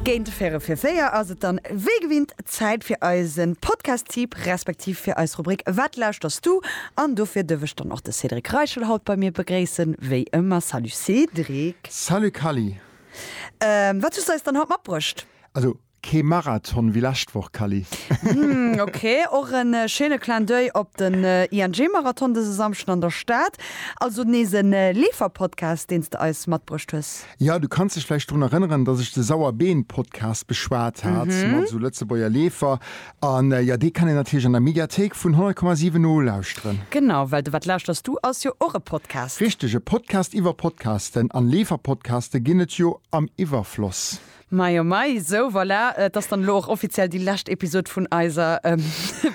Géint véierel fir véier ass et dann wéi gewinnt Zäit fir eise Podcast-Tipp, respektiv fir eis Rubrik Wat lauschter's du? An dofir duerf ech dann och de Cédric Reichel haut bei mir begréissen, wéi ëmmer. Salut Cédric! Salut Kally! Wat hues du eis dann haut matbruecht? Also Kee Marathon wéi lescht Woch, Kally. Hm, ok. Och e schéine Clin d'oeil op den ING-Marathon dëse Samschden an der Stad. Also nees e Leefer-Podcast, deen s de eis matbruecht hues. Jo, du kanns dech vläicht drun erënneren, datt ech de Sauerbeen-Podcast beschwat hat mat esou Lëtzebuerger Leefer. A jo, dee kann een natierlech an der Mediathéik vun 100,7 nolauschteren. Genau, well de Wat lauschters du? ass jo och e Podcast. Richteg, e Podcast iwwer Podcasten. An Leefer-Podcaste ginn et jo am Iwwerfloss. Mei oh mei, sou voilà, et ass dann elo och offiziell déi lescht Episod vun eiser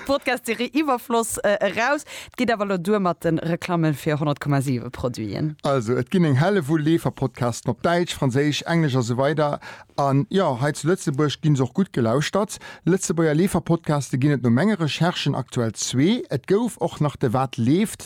Podcast-Serie Iwwerfloss eraus. Et geet awer elo duer mat de Reklamme fir 100,7 Produiten. Also, et ginn eng Hellewull Leeferpodcasten op Däitsch, Franséisch, Englesch a sou weider an jo, hei zu Lëtzebuerg ginn se och gutt gelauschtert. Lëtzebuerger Leeferpodcaste ginn et no menge Recherchen aktuell zwee. Et gouf och nach de Wat leeft?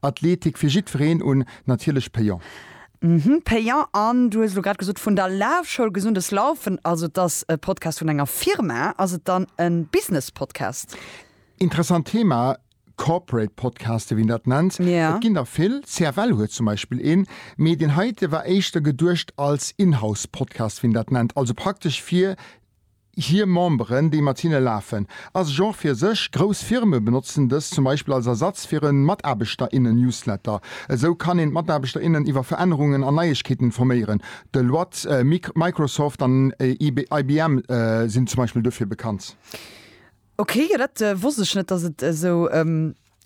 Athletik fir jiddwereen un, natierlech payant. Mhm, payant. An du hues elo grad gesot vun der Lafschoul, Gesundes Laufen, also et ass e Podcast vun enger Firma. Ass et dann e Business-Podcast? Interessant Thema, Corporate Podcaste wéi een dat nennt. Et ginn der vill, CFL huet zum Beispill een, mee deen heite war éischter geduecht als In-House Podcast wéi een dat nennt, also praktesch fir hir Memberen, déi mat hinne lafen, ass Genre fir sech. Grouss Firme benotzen dës zum Beispill als Ersatz fir e Mataarbechterinnen-Newsletter. Esou kann een d'Mataarbechter, innen iwwer Verännerungen an Neiegkeeten informéieren. Deloitte, Microsoft an IBM sinn zum Beispill duerfir bekannt. Ok, jo dat wosst ech net, dass et esou.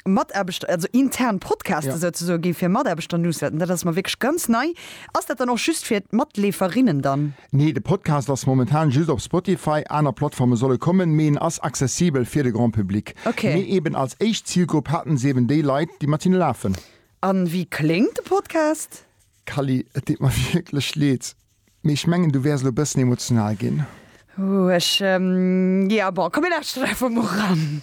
Mataarbechter, also intern Podcaste ja. souzesoen ginn fir Mataarbechter Newsletten. Dat ass mer wierklech ganz nei. Ass dat dann och just fir d'Matleeferinnen dann? Nee, de Podcast ass momentan just op Spotify, aner Plattforme solle kommen, mee en ass accessibel fir de Grand Public. Okay. Mee eben als éischt Zilgrupp haten se eben déi Leit, déi mat hinne lafen. An wéi kléngt de Podcast? Kally, et deet mer wierklech leed, mee ech mengen, du wäers elo e bëssen emotional ginn. Ech, ähm, ja, bon, komm mir lauschteren einfach mol ran.